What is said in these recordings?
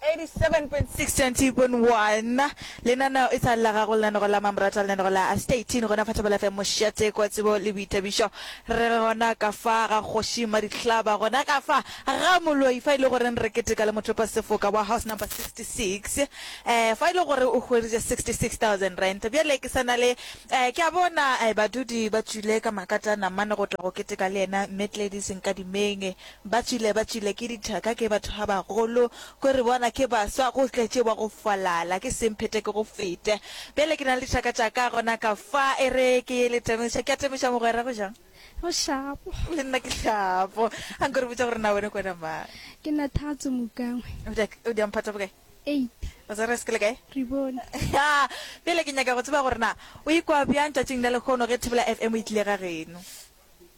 87.621 lenaneo e sa le la gago lenaneo la mamorata lenaneo la a statin gona fa thapelo fm mošate kwa tsebo le boithabišo re re gona ka fa ga kgoši madihlaba gona ka fa ga moloi fa e le goreng re keteka le mothopa sefoka wa house number 66 um fa e le gore o hwereditše 66000 rent bjale ke sana le um ke a bona um badudi ba tswile ka makata namane go tla go keteka le yena mme tlediseng ka dimeng Ba tšwile ba tšwile ke dithaka ke batho ba bagolo ko re bona ke baswa go tletše wa go falala ke seng phete ke go fete bjale ke na le dithaka tša ka gona ka fa e re ke ye le temeša ke a temeša mogwera go jang go shapo le nna ke shapo a nko re botša gore na wene ko wena mang ke na thatso mokangwe o di o di amphata bokae eight o tsere se ke le kae re bone ya bjale ke nyaka go tseba gore na o ikwa bjang tšatšing la lekgono ge thibela fm e tlile ga geno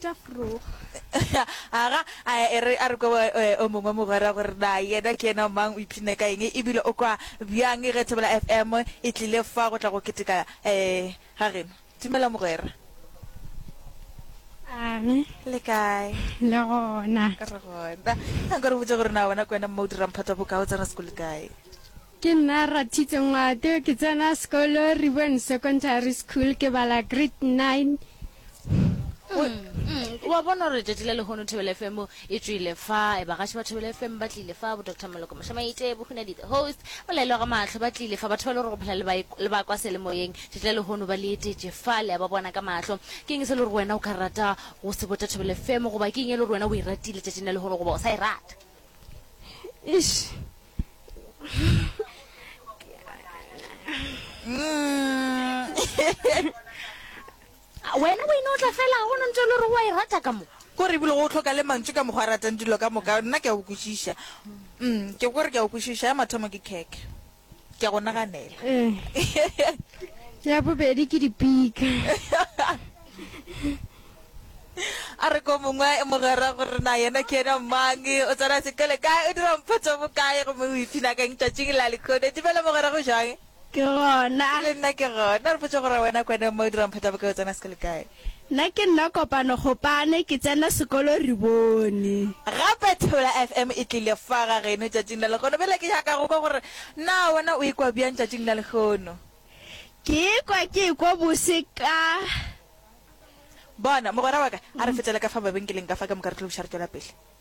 tša frog aga a e re a re ko eh, o mongwe mogwera gore na yena ke ena mang o ipshine ka eng ebile o kwa bjang ge thobela fm e tlile fa go tla go keteka um ga geno dumela mogwera ame le kae le gona re gona a nka re botse gore na wena ke wena mma o dirang phata bokao tsena sekole kae Ke nna Rathitse Ngwate, ke tsena sekolo Riboen Secondary School, ke bala grade nine. Mm, wa bona gore tšatši la lehono thobele fm e tswile fa e bagaši ba thobele fm ba tlile fa bo dr moloko mošamaite bohunadi the host molaelo ga matlho ba tlile fa batho ba le gore go phela le ba kwa selemoyeng tšatši la lehono ba le etetše fa le ya ba bona ka matlho ke eng se le gore wena o ka rata go se botsa thobele fm goba ke eng e le gore wena o e ratile tšatšing la lehono goba o sa e rata wena o ino o tla fela go no ntse e le gore wa e rata ka mo ko re ebile go tlhoka le mantso ka mokgwa a ratang dilo ka moka nna ke a o kwešiša mm, ke gore ke a o kwešiša ya mathomo ke khekhe ke go naganela eh. ya bobedi ke dipika a re ko mongwe e mogwera gore na yena ke ena mang o tsena sekole kae o dira mpotso bokae gomme o iphina kang tšatšing la lekgone dimela mogwera go jang ke gona le nna ke gona re potse gore wena kwane mo o dirang phata bokae o tsena sekole kae Nna ke nna kopano Gopane ke tsena sekolo re bone. Gape Thula FM e tlile fa ga geno tšatšing la lekgono bjale ke nyaka go kwa gore na wena o e kwa bjang tšatšing la lekgono. Ke e kwa ke e kwa bose ka. Bona, mogwera wa ka a re fetele ka fa mabenkeleng ka fa ka moka re tlo buša re tšwela pele.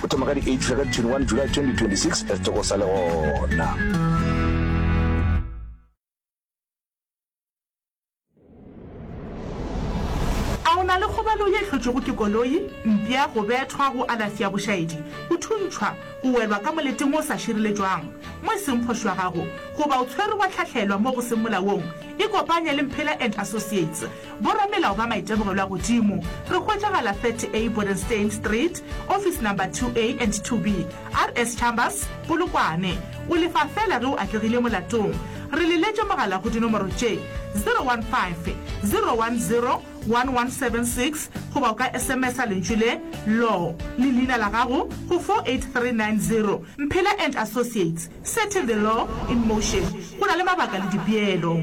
Go thoma ka di 8 fihla ka di 21 July 2026 re toko sa le gona. A o na le kgobalo ye hlotšwego ke koloi, mpša, go bethwa, go alafi ya bošaedi, go thuntšhwa, go welwa ka moleting wo o sa šireletšwang mo e seng kgoši wa gago, goba o tshwerwe wa hlahlelwa mo go seng molaong? Ikopanye le Mphela and Associates Boramelao ba maitemogelo a godimo re hwetšagala 30A Bodenstein Street, office number 2A and 2B, RS Chambers, Polokwane. O lefa feela ge o atlegile molatong. Re le letše mogala go dinomoro tše, 015 010 1176 goba o ka sms-a lentšu le, Law, le leina la gago go 48390. Mphela and Associates, setting the law in motion. Go na le mabaka le dipeelo.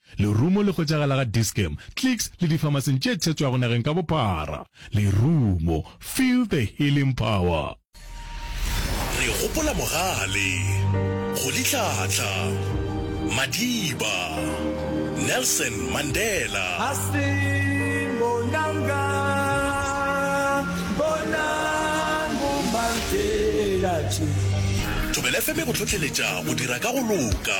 Lerumo le hwetšagala ga Dis-Chem, Clicks le difamaseng tše thetšwago nageng ka bophara. Lerumo, feel the healing power. Re gopola Mogale, go Litlhatlha, Madiba, Nelson Mandela. A se bonanga bonang bo mang fela tše. Thobela FM e go hlohleletša go dira ka go loka.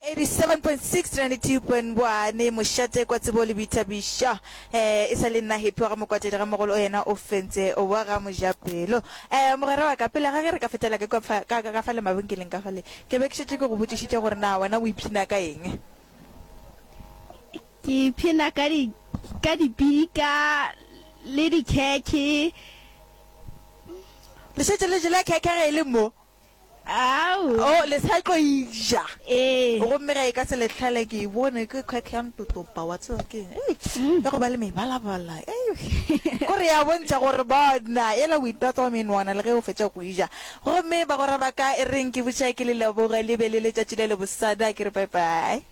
87.692.1 Mošate kwa tsebo le boithabišo eh E sa le nna Happy wa ga Mokwatedi ga mogolo o yena o fentse wa ga Mojapelo eh Mogwera wa ka pele ga ge re ka fetela ka kwa fa ka ka fa le mabenkeleng ka fa le ke be ke šetše ke go botšišitše gore na wena o iphina ka eng Ke iphina ka di ka dipika le dikhekhe Le šetše le jele khekhe ge e le mo Aowa. Oh, le sa tlo eja. Ee. Gomme ga e ka se le hlale ke e bone ke kgwek ya ntotopa, wa tseba ke eng? Ei, ya go ba le mebalabala. Ei, gore ya bontšha gore bona e la o itatsa wa menwana le ge o fetša go eja. Gomme bagwera ba ka e reng ke butše ke le leboge, le be le letšatši le lebosana, ke re bye-bye.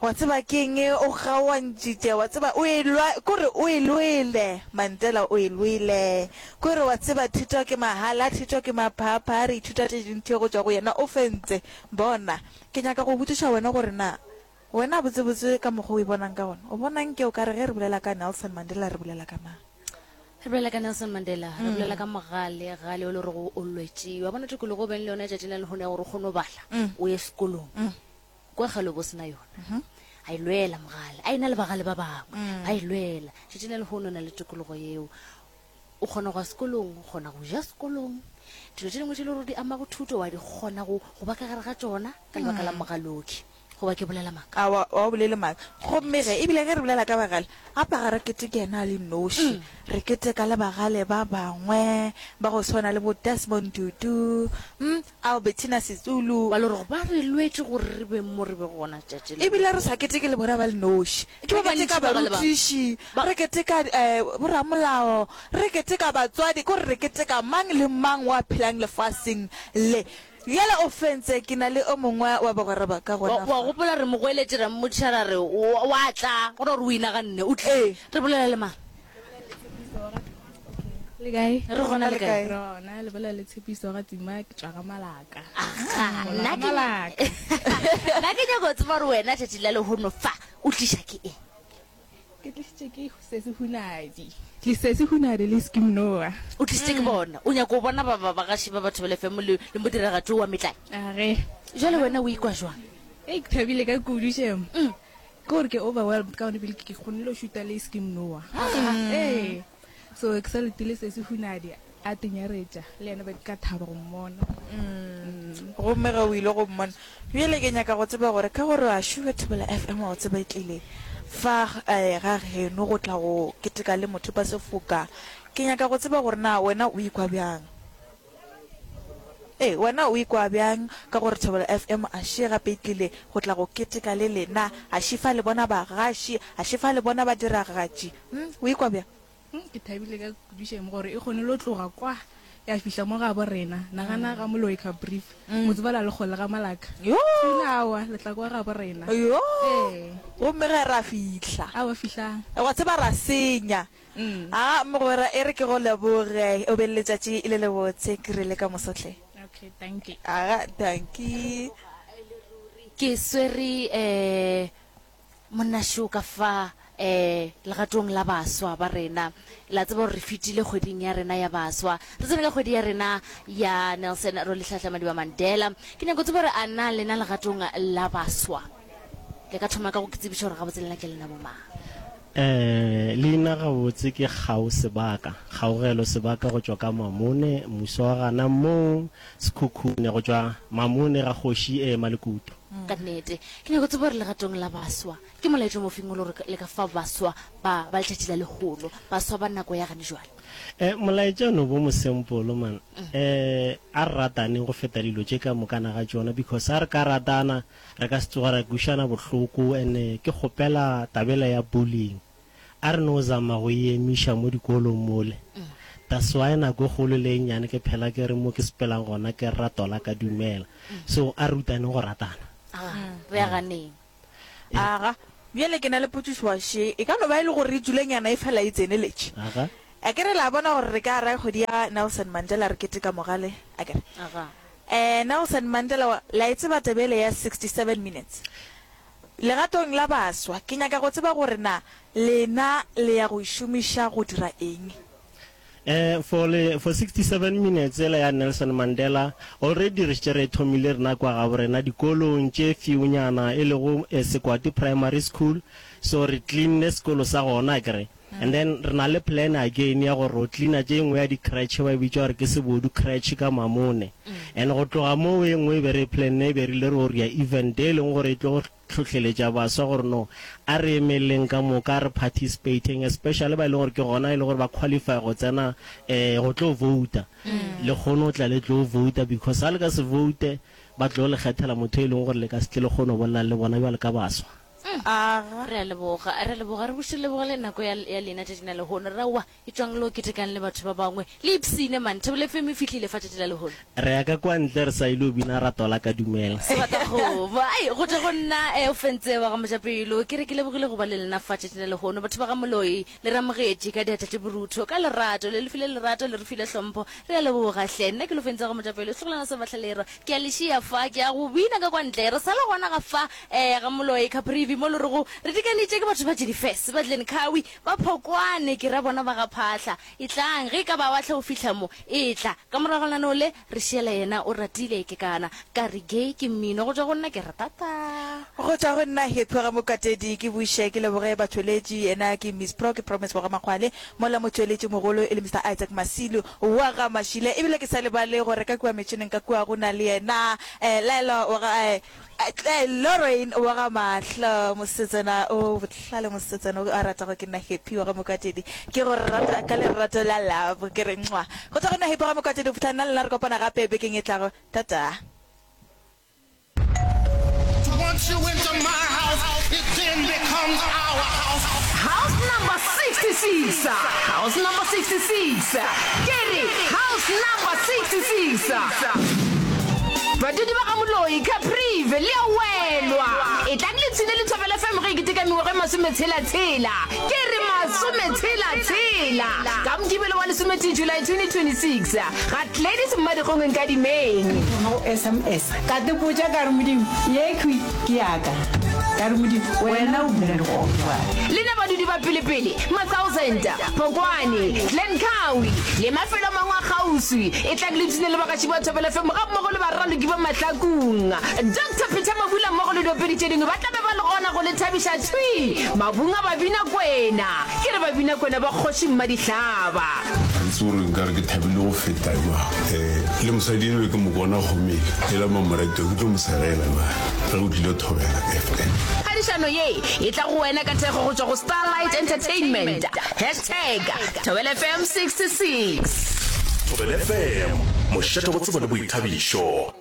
Wa tseba ke eng e o kgaoantšitše? Wa tseba o e lwa, ke gore o e lwele, Mantela, o e lwele. Ke gore wa tseba thuto ke mahala, thuto ke maphapha, re ithuta tše dintši go tšwa go yena. O fentse. Bona, ke nyaka go botšiša wena gore na wena botsebotse ka mokgwa o e bonang ka gona, o bona nke o ka re ge re bolela ka Nelson Mandela re bolela ka mang? Re bolela ka Nelson Mandela, re bolela ka mogale, gale o le gorego o lwetše. Wa bona tokologo o beng le yona letšatši la lehono ya gore o kgone go bala, o ye sekolong. kwa galo bo sena yona mhm. a e lwela mogale a e na le bagale ba bangwe mm. ba e lwela šetse na le go nona le tokologo yeo o kgona go ya sekolong o kgona go ja sekolong dilo tse dingwe tse le gore di ama go thuto wa di kgona go ba ka gare ga tsona ka lebaka la mm. mogaloki goba ke bolela maaka wa o bolele maaka gomme ge ebile ge re bolela ka bagale gapa ga re kete ke ena a le noši mm. re kete ka le bagale ba bangwe ba go tshwana le bo desmond dudu um mm, Albertina Sisulu, wa le gore ba re lwetše gore re beng mo re bego gona letšatši la. E bile re sa keteke le bona ba le noši. Ke ba bantši ba ba le bang. Re keteka barutiši, re keteka boramolao, re keteka batswadi, ke gore re keteka mang le mang wa phelang lefaseng le. Bjale o fentse, ke na le o mongwe wa bagwera ba ka gona fa. Wa gopola re mo goeletše, ra mmotšiša ra re, O a tla, gona gore o inaganne, o tlile. Re bolela le mang? le kae re gona le kae rona le bolela le tshepiso ga tima ke tswa ga malaka nna ke malaka nna ke nyako tseba re wena tšatši la lehono fa o tliša ke e ke tlisitše ke sese hunadi tlisese hunadi le skim noa o tlisitše ke bona o nyako o bona ba ba bagaši ba batho ba lefemo le le modiragatho wa metlai age jale wena o ikwa jwang e ke thabile ka kudušemo mm. kore ke overwhelmed ka gone pele ke kgonne go šuta le skin noa ee so ke sa letile se se hunadi a tenyaretša le yena ba ka thaba go mmona gomme ge o ile go mmona bjele ke nyaka go tseba gore ka gore a šuga thibela f m wa go tseba e tlile fa eh, ga geno go tla go keteka le motho ba sefoka ke nyaka go tseba gore na wena o ikwa bjang Ee, wena o ikwa bjang ka gore Thobela FM a še gape e tlile go tla go keteka le lena? A še fa le bona bagaši? A še fa le bona badiragatši? Hm, o ikwa bjang? Hm, ke thabile ka kudu šem gore e kgone lo tloga kwa ya fihla mo ga bo rena. Nagana ga Moloi ka brief, mm. mo tsebala le kgolle ga malaka. Yo! Awa, le tla kwa ga bo rena. Yo! Ee. Gomme ge ra fihla. Awa fihlang. Wa tseba ra senya. A mogwera e re ke go leboge, o be le letšatši le le botse. Ke rile ka moso hle. Okay, danki. Aga, danki. Ke swere um monna Show ka fa um legatong la baswa ba rena. Le a tseba gore re fetile kgweding ya rena ya baswa, re tsene ka kgwedi ya rena ya Nelson Rolihlahla Madiba Mandela. Ke nyako tseba gore a na lena legatong la baswa? le ka thoma ka go ke tsebiša gore gabotse lena ke lena bomang Eh, leina gabotse ke kgao sebaka kgaogelo sebaka go tšwa ka mamone muso wa gana mong sekhukhune go tšwa mamone ga kgoši e ema lekutu mm. ka nnete ke nyako tsebo gore legatong la baswa ke molaetso mofeng o le gore le ka fa baswa ba ba letšatši la legolo baswa ba nako ya gane jwale um molaetso no bo mosempolo man um a re rataneng go feta dilo tše ka mokana ga tsona because a re ka ratana Re ka se tsoge ra kwišana bohloko and ke kgopela tabela ya bullying a re no zama go e emiša mo dikolong mole. That's why nako e kgolo le e nnyane ke phela ke re mo ke sepelang gona ke rrato la ka dumela. So a re rutaneng go ratana. Aa, re ya ganeng. Aga, bjale ke na le potšišo wa še, e ka no ba e le gore tsulenyana e fela e tseneletše. Aga. Akere la bona gore re ka ra kgwedi ya Nelson Mandela re keteka mogale, akere. Aga. Eh, Nelson Mandela wa, la e tseba taba ele ya 67 minutes? Legatong la baswa, ke nyaka go tseba gore na lena le ya go e šomiša go dira eng? Eh, for le, for 67 minutes ela ya Nelson Mandela, already re šetše re e thomile rena kwa gabo rena dikolong tše fewnyana, e lego, eh, Sekwati Primary School, so re cleanne sekolo sa gona, akere? And then re na le plan again ya gore o cleaner tše engwe ya di cretch ba e bitša gore ke sebodu cretch ka mamone. And go tloga moo e engwe e be re e planne e be rile re o rea event e leng gore e tlo go hlohleletša baswa gore no a re emeleleng ka moka a re participateng especially ba e leng gore ke gona e leng gore ba qualify go tsena um go tlo vouta. Le kgone go tla le tlo vouta because ga le ka se voute ba tlo le kgethela motho e leng gore le ka se tle le kgone go bolelang le bona bjale ka baswa. Re a leboga. Re a leboga. Re buše lebogo le nako ya, ya lena tšatšing la lehono. Re aowa, etšwang le yo ketekang le batho ba bangwe. Le ipshine, man. Thabo le FM e fihlile fa tšatši la lehono. Re ya ka kwa ntle re sa ile go bina ra tola ka dumela. Sebatagoba. Ai, go tšwa go nna, eh, o fentse wa ga Mojapelo. Ke re ke lebogile go ba le lena fa tšatšing la lehono, batho ba ga Moloi. Le re amogetše ka diatla tše borutho, ka lerato. Le re file lerato, le re file hlompho. Re a leboga, hle. Nna ke lo fentša go motšapelo, setlogolwana sa bahlalerwa. Ke a le šiya fa, ke ya go bina ka kwa ntle. Re sa le gona ga fa, ee, ga Moloi, Caprivi, mo lorego re dikanitše ke batho ba Jennifer's, ba Glencowie, ba Phokwane, ke ra bona ba ga Phahla. Etlang, ge e ka ba wa hlwa o fihla mo, etla. Ka morago lenaneo le, Re šiela yena o ratile ke kana ka re gay ke mmino go tšwa go nna ke re tata. Go tšwa go nna he phuga mokatedi ke buše ke leboge batšweletši yena ke Miss Pro ke Promise Bogamakgwale mola motšweletši mogolo e le Mister Isaac Masilu wa ga Mashile ebile ke sa lebale gore ka kua metšhineng ka kua go na le yena eh Laelwa wa ga eh Tle, Lorraine wa ga mahlo, mosetsana o bohlale, mosetsana o a ratago ke nna Happy wa ga Mokwatedi. Ke go rata ka lerato la love. Ke re nxwa. Go tšwa go nna Happy wa ga Mokwatedi go fihla nna le lena re kopana gape bekeng e tlago. Ta-ta. Once you enter my house, it then becomes our house. House number 66 House number 66 Ke re house number 66 Badudi ba ga Moloi, Caprive, le a welwa. Etlang le tshine lethabo la fm ge e keteka mengwago e masometshela-tshela. Ke re masometshela-tshela! Ka Mokibelo wa lesometee July 2026, ga Gladys Mmadikgong Nkadimeng. Ke thoma go sms ka te botša ka re Modimo ye khwi ke yaka. Ka re Modimo wena o bula dikgogo jwale. Lena badudi ba pele-pele, ma-thousand. Phokwane, Langkawi le mafelo a mangwe a kgauswi. E tla le tune le bagatši ba Thobela FM gammogo le baraloki ba Mahlakung. Doctor Peter Mabula mmogo le diopedi tše dingwe ba tla be ba le gona go le thabiša thwi mabung a Babinakwena. Ke re Babinakwena ba Kgoši Mmadihlaba. Ga ke tsebe gore nka re ke thabile go feta jwang. Le mosadi enwa ke mo bona go mele, ela mamoratwa ke tlo mo segela na. re o tlile thobela fm phadišano ye e tla go wena ka thekgo go tšwa go starlight entertainment hashtag thobela fm 66 thobela fm mošate go tsebo le boithabišo